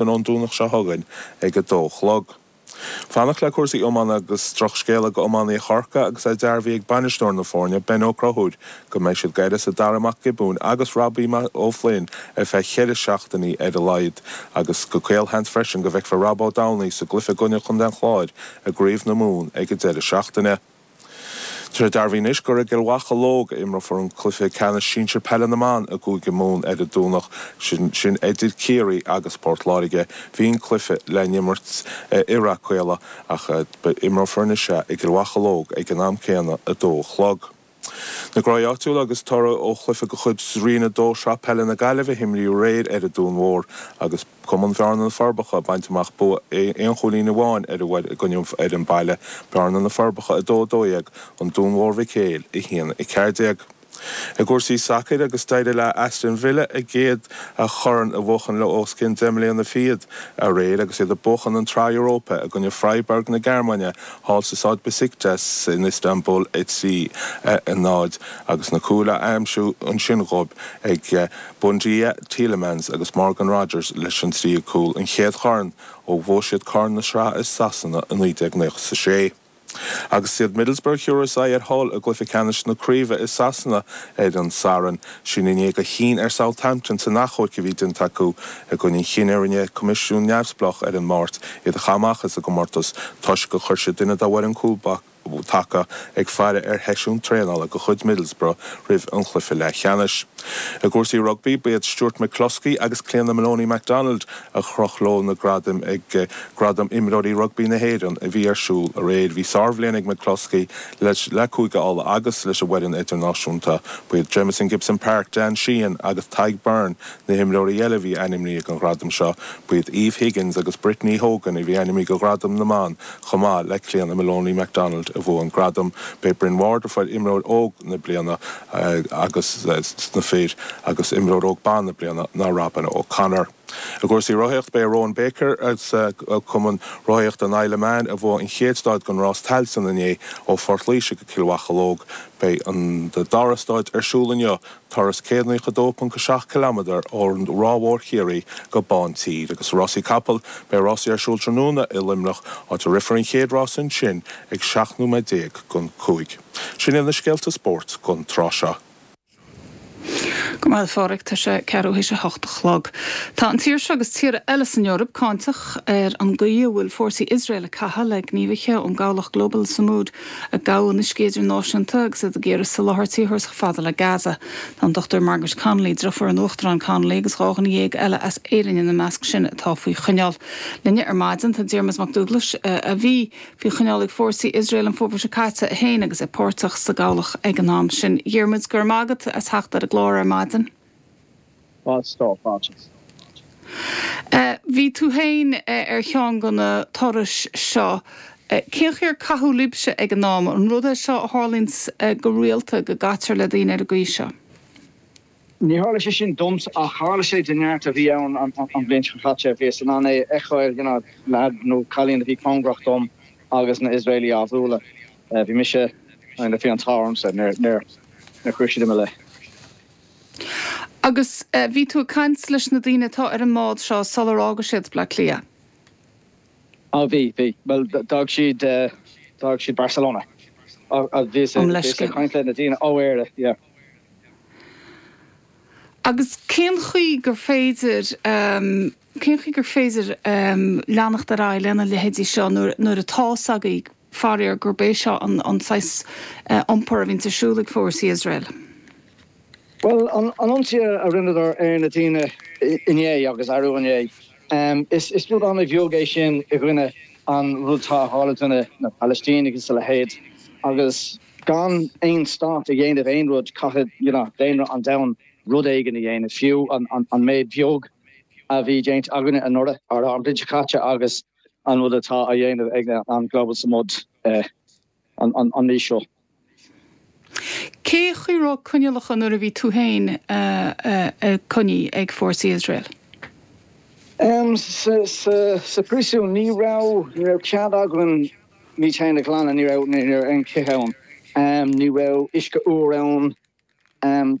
an Domhnach seo chugainn ag a dó a chlog. Fanacht le cúrsaí iomána agus drochscéala d'iománaithe Chorcaí agus é dearbhaithe ag bainisteoir na foirne, Ben Ó Conchúir, go mbeidh siad d'uireasa Darragh Mac Giobúin agus Robbie Ó Floinn ar feadh cheithre seachtainí ar a laghad agus gur caolsheans freisin go bhfeicfear Rob Downey sa gcluiche i gcoinne Chontae an Chláir i gCraobh na Mumhan ag an deireadh seachtaine. Tá dearbhaithe anois gur i gCill Mocheallóg a imreofar an cluiche ceannais sinsir peile na mban i gCúige Mumhan ar an Domhnach, sin idir Ciarraí agus Port Láirge. Bhí an cluiche le n-imirt i Ráth Caola ach imreofar anois é i gCill Mocheallóg ag an am céanna, 2 a chlog. Na Gráigh áitiúla agus toradh ó chluiche de chuid Roinn 2 Shraith Peile na Gaillimhe a himríodh aréir ar an Dún Mhór agus. Cumann Bhearna na Forbacha ag baint amach bua aon chúilín amháin ansiúd i gcoinne fhoireann baile Bearna na Forbacha 2 12 An Dún Mhór Mhic Éil 1 14 I gcúrsaí sacair agus d'éirigh le Aston Villa a gcéad chorn a bhuachan le os cionn deich mbliana fichead aréir agus iad ag buachan an tsraith Europa i gcoinne Freiburg na Gearmáine thall sa Staid Besiktas in Istanbul 3 0 agus na cúil á aimsiú ansin dhóibh ag Buendía, Tielemans agus Morgan Rogers leis an tríú cúl, an chéad chorn ó bhuaigh siad Corn na Sraithe i Sasana i 1996. Agus is iad Middlesbrough a thabharfas aghaidh ar Hull i gcluiche ceannais na craoibhe i Sasana ar an Satharn sin i ndiaidh gur chinn ar Southampton san achomharc a bhí déanta acu i gcoinne an chinnidh a rinne coimisiún neamhspleách ar an Máirt iad a chaitheamh amach as an gcomórtas toisc gur chuir siad duine dá bhfoireann cúl taca ag faire ar sheisiún traenála de chuid Middlesbrough roimh an chluiche leathcheannais. I gcúrsaí rugbaí, ba iad Stuart McCloskey agus Clíona Moloney MacDonald a chroch leo na gradaim ag Gradaim Imreoirí Rugbaí na hÉireann a bhí ar siúl aréir. Bhí sárbhliain ag McCloskey le Cúige Uladh agus, leis an bhfoireann idirnáisiúnta, ba iad Jamison Gibson-Park, Dan Sheehan agus Tadhg Beirne na himreoirí eile a bhí ainmnithe don ghradam seo. Ba iad Eve Higgins agus Brittany Hogan a bhí ainmnithe do ghradam na mban chomh maith le Clíona Moloney MacDonald a bhuaigh an gradam. Ba é Bryn Ward a fuair imreoir óg na bliana agus sna fir agus imreoir óg ban na bliana ná Robyn O Connor. I gcúrsaí rothaíocht ba é Rowan Baker as cumann rothaíochta an Isle of Man a bhuaigh an chéad stáid den Rás Tailteann inné ó Phort Laoise go Cill Mocheallóg. Beidh an dara stáid ar siúl inniu Turas 192.7 ciliméadar ó Ráth Mhór Chiarraí go Bántír agus Rásaí Capall, beidh rásaí ar siúl tráthnóna i Luimneach, áit a rithfear an chéad rás ansin ag 17 nóiméad don cúig. Sin iad na scéalta spóirt don tráth seo. Go maith a Phádraig, tá sé ceathrú théis a hocht a chlog. Tá an tír seo agus tíortha eile san Eoraip cáinteach ar an gcaoi a bhfuil fórsaí Iosrael ag caitheamh le gníomhaithe ón gcabhlach Global Sumud, a gabhadh in uiscí idirnáisiúnta agus iad ag iarraidh soláthar tíorthúlachta a fháil go Gaza. Tá an Dr Margaret Connolly, deirfiúr an Uachtaráin Connolly, agus dhá dhuine dhéag eile as Éirinn ina measc sin atá faoi choinneáil. Linne ar maidin tá Diarmaid Mac Dúglais, a bhí faoi choinneáil ag fórsaí Iosrael an fómhar seo caite, é féin agus é páirteach sa gcabhlach ag an am sin. Dhiarmaid, go raibh maith agat as theacht ar an gclár ar maidin. Fadhb ar bith, a Mháirtín. Bhí tú féin ar cheann de na turais seo. Cén chaoi ar caitheadh libhse ag an am? An rud é seo a tharlaíonn go rialta, go gcaitear le daoine ar an gcaoi seo? Níor tharla sé sin domsa ach tharla sé do neart a bhí ann an bhliain seo caite. Bhíos in ann é a fheiceáil, leaid nó cailín a bhí cóngarach dom agus na Iosraeligh á bhualadh. Bhí mise, bhí an t-ádh ormsa, níor chuir siad lámh i mo leith. Agus bhí tú ag caint leis na daoine atá ar an mbád seo sular fhága siad Bleá Cliath? Á bhí, bhí. Bhuel, d'fhág siad, d'fhág siad Barcelona. Ach bhíos, Um bhíos ag leithscéal. caint le na daoine ó Éire, yeah. Agus cén chaoi gur féidir. Cén chaoi gur féidir leanacht ar aghaidh lena leithéidí seo nuair atá 's agaibh, faraor, gurb é seo an saghas iompair a bhíonns ar siúl ag fórsaí Iosrael? Bhuel, an ionsaí a rinneadar ar na daoine inné agus arú inné, is rud an-bheag é sin i gcoinne an rud atá ag tarlú do na Palaistínigh is a leithéid. Agus gan aon stát ag déanamh aon rud, caithfidh, you know, daonra an domhain rud éigin a dhéanamh, fiú an méid bheag. a bhí déanta againne anuraidh, ará an bhliain seo caite agus an rud atá á dhéanamh ag an Global Sumud an mhí seo. Cé chaoi raibh coinniollacha nuair a bhí tú féin coinnithe ag fórsaí Iosrael? Sa phríosún, ní raibh cead againn muid féin a ghlanadh, ní raibh aon chith ann, ní raibh uisce úr ann,